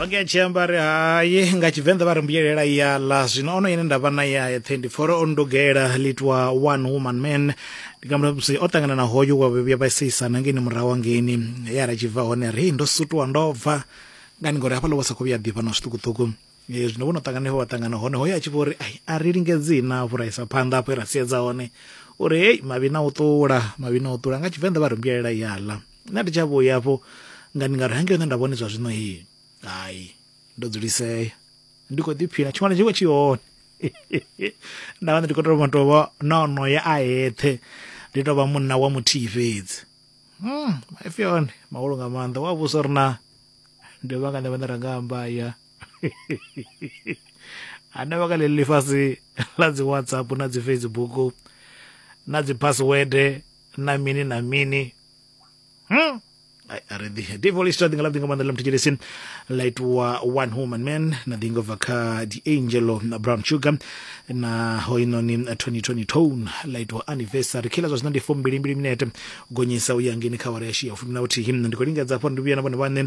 onge a tshi amba ri hayi nga tshivenḓa vha ri mbuyelela ya ḽa zwino ono ine nda vha na ya eṱhe ndi pfora o ndugela litwa one woman man ndi nga musi o ṱangana na hoyo wa vhuya vha seisana ngeni murahu angeni ye a ra tshi bva hone ri ndo sutuwa ndo bva ngani ngori hafhaḽa vha sa khou vhuya ḓifha na zwiṱukuṱuku Eh, zwino vho no ṱangana vha ṱangana hone hoyo a tshi vho ri ai a ri lingedzi na vhuraisa phanḓa afho e ra siedza hone uri hei mavhi na u ṱula mavhi na u ṱula nga tshivenḓa vha ri mbuyelela ya ḽa nṋe ndi tsha vhuya afho nga ndi nga ri hange hone nda vhone zwa zwino hii hai ndo dzulisea ndi khou ḓiphina tshiṅwana tshi khou tshi hone nda vha ndi khou tou tovha na onoya a eṱhe ndi tovha munna wa muthihi fhedzi hmm maipfi one mahulu nga maanḓa wa vhusa uri na ndi vha nga nṋe vhane ra nga amba ya hanevha kha ḽeḽi ḽifhasi ḽa dzi whatsapp na dzi facebook na dzi password na mini na mini Hmm? Ai, a ri ḓi ndi voice ra ḓi nga ḽa ḓi nga maanḓa ḽa muthetshelesini ḽa itiwa one woman man na ḓi nga bva kha the angel na brown sugar na hoinoni 2020 tone ḽa itiwa anniversary kila zwa zwino ndi fo mbili mbili minete gonyisa u ya ngeni kha wara ya shia fumi na vhuthihi ndi khou lingedza hafha ndi vhuya na vhone vhaṋe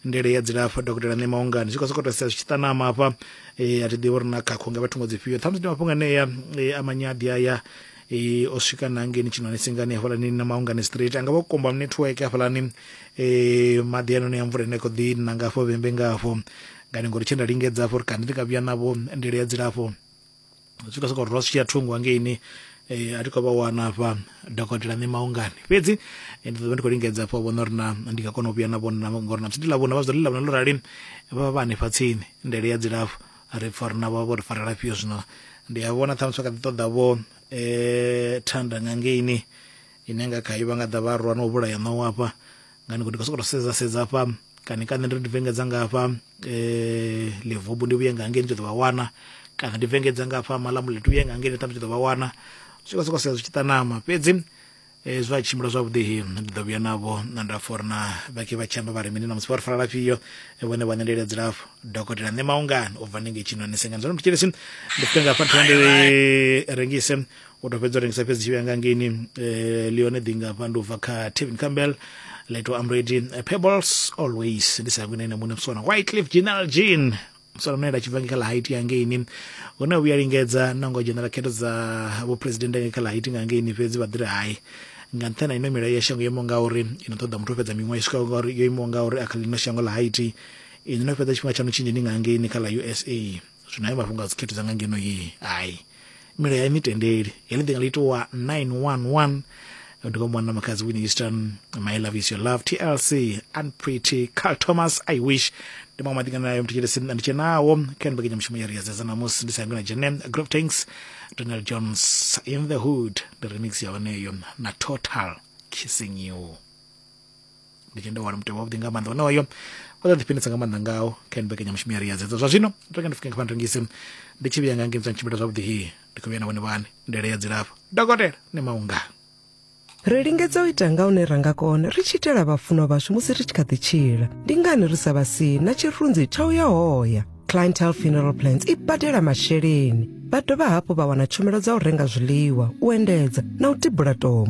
ndele ya dzilafho dokotela ṋe maungani zwi khou sokou tou sia zwi tshi ṱanama hafha eh, a thi ḓivhi uri na khakho nga vhathu ngo dzifhio ṱhamusi ndi mafhungo anea eh, a manyaḓi aya e, o swika na ngeni tshinoni tsingani hafhaḽani na maungani straight anga vha komba network hafhaḽani e, maḓi anoni a mvula ine kho ḓi na ngafho vhembe ngafho ngani ngori tshe nda lingedza afho uri kani ndi nga vhuya navho ndele ya dzilafho swika soko ro swia thungo hangeini eh, a thi khou vha wana afha dokotela ṋe maungani fhedzi eh, ndi ḓo vha ndi khou lingedza afho vhona uri na ndi nga kona u vhuya na vhona ngori na psi ndi ḽavhuna vha zwi ḓo ḽi ḽavhuna ḽo rali vha vha hanefha tsini ndele ya dzilafho ri pfa uri navho vho ri farela fhio zwino ndi a vhona ṱhamusi vha kha ḓi ṱoḓa vho um eh, thanda nga ngeini ine nga khayo vha nga ḓa vha rwa na u vhulaya ṋawo afha nga ni khou ndi khou sokou to sedza sedza afha kana kana ndi ri ndi vengedza nga afha um eh, livubu ndi vhuye nga ngei ni tshi ḓo vha wana kana ndi vengedza nga afha malamuleti uye nga ngei ni ṱhamusi tshi ḓo vha wana zwi khou sokou sedza zwi tshi ṱanama fhedzi hezwi a tshimbila zwavhuḓi hi ndi ḓo vhuya navho nda pfa uri na vha ke vha tshi amba vha ri mini namusi vha ri fara lafhio vhone vha ṋelela dzilafho dokotela nṋe maungani u bva ndi ngei tshinoni sengani zwo mutshilisi ndi fike nga fhathina ndi rengise u tou fhedza u rengisa fhedzi tshivhuya nga ngeini leone ḓi nga fha ndi ubva kha tevin campbell leto amredi pebbles always ndi sa yangwini ene muṋe msona white cliff general jean swa lune ḽa tshibva kha ḽa haiti ya ngeini hune a vhuya lingedza na ngo dzhenela khetho dza vhuphuresidennde nga kha ḽa haiti nga ngeini fhedzi vha ḓiri hai nga nṱhani ha ino milayo ya shango yo imaho ngauri i no ṱoḓa muthu o fhedza miṅwaha i swikaho ngauri yo imaho ngauri a kha ḽino shango ḽa haiti ini no fhedza tshifhinga tshaṋu tshinzhi ni nga ngeini kha ḽa usa zwino hayo mafhungo a dzikhetho dza nga ngeno ye hai mila ya mitendeli heḽi ḓinga ḽi itiwa 911 ndi kwa mwana makhadzi winnie easton my love is your love tlc unpretty carl thomas i wish ndi maṅwe maḓinga nayo mthetshelesi ndi tshe nawo kha ni mbekanya mushumo ya ri ya dzedza namusi ndi sa na jene grove tanks donald jones in the hood ndi remix ya honeyo na total kissing you ndi tshende wana mutevhe wavhuḓi nga maanḓa onoyo o ḓa ḓifhinisa nga maanḓa ngao kha ni mbekanyamushumo ya ri ya dzedzo zwa zwino ndo ndi fike nga rengise ndi tshi vhuya nga ngei mtsani tshimbila zwavhuḓi hi ndi khou vhuya na vhone vhane ndele ya dzilafho dokotela ni maunga ri lingedza u ita nga hune ra nga kona ri tshi itela vhafunwa vhashu musi ri tshi kha ḓi tshila ndi ngani ri sa vha si na tshirunzi tsha u ya hoya clientele funeral plans i badela masheleni vha dovha hafhu vha wana tshumelo dza u renga zwiḽiwa u endedza na u tibula tombo